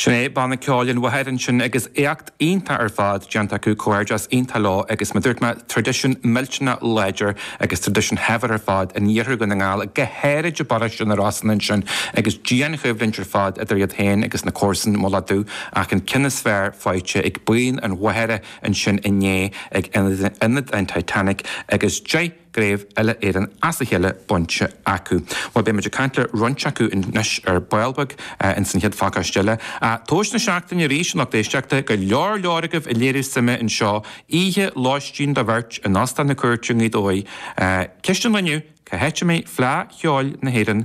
Sin é banna ceoil an Mhachaire ansin agus éacht iontach ar fad déanta acu, comhghairdeas iontach leo agus mar dúirt mé, traidisiún millteanach láidir agus traidisiún shaibhir ar fad in iarthar Dhún na nGall, go háirid i bparóiste na Rosann ansin agus dianchoimhlint ar fad idir iad féin agus na comharsain Mullach Dubh ach an ceann is fearr faighte ag buíon an Mhachaire ansin inné ag Ionad an Titanic agus gCraobh Uile-Éireann as a chéile bainte acu. Bhuel, beidh muid ag caint le roinnt acu anois ar ball beag ins an chéad phacáiste eile. Tomhais na seachtaine arís, an lucht éisteachta, go leor leor agaibh ag léiriú suime anseo. Oíche lóistín do bheirt in Óstán na Cúirte i nGaoth Dobhair. Ceist an lae inniu, Cá háit a mbeidh Fleadh Cheoil na hÉireann?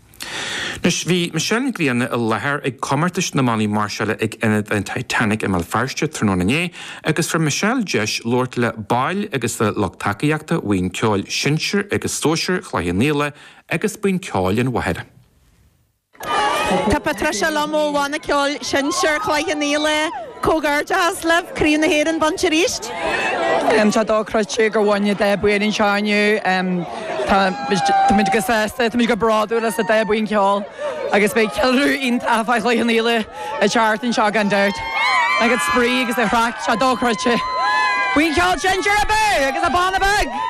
Anois, bhí Michelle Nic Grianna i láthair ag comórtais na mbannaí máirseála ag Ionad an Titanic i mBéal Feirste tráthnóna inné agus fuair Michelle deis labhairt le baill agus le lucht tacaíochta Bhuíon Ceoil Sinsir agus Sóisir Chloich Cheann Fhaola agus Buíon Ceoil an Mhachaire. Tá Patricia liom ó Bhanna Ceoil Sinsir Chloich Cheann Fhaola. Comhghairdeas libh, Craobh na hÉireann bainte arís! Tá dochreidte gur bhain na 10 buíon anseo inniu. Táimid go sásta, táimid go bródúil as na 10 buíon ceoil agus beidh ceiliúradh iontach fá choinne an fhéile a theacht anseo gan dabht. Tá an spraoi agus an chraic, tá dochreidte. Buíon Cheoil Sinsear abú agus an banna beag!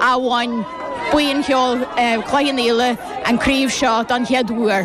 a bhain buíon cheoil Chloich Cheann Fhaola an craobh seo don chéad uair.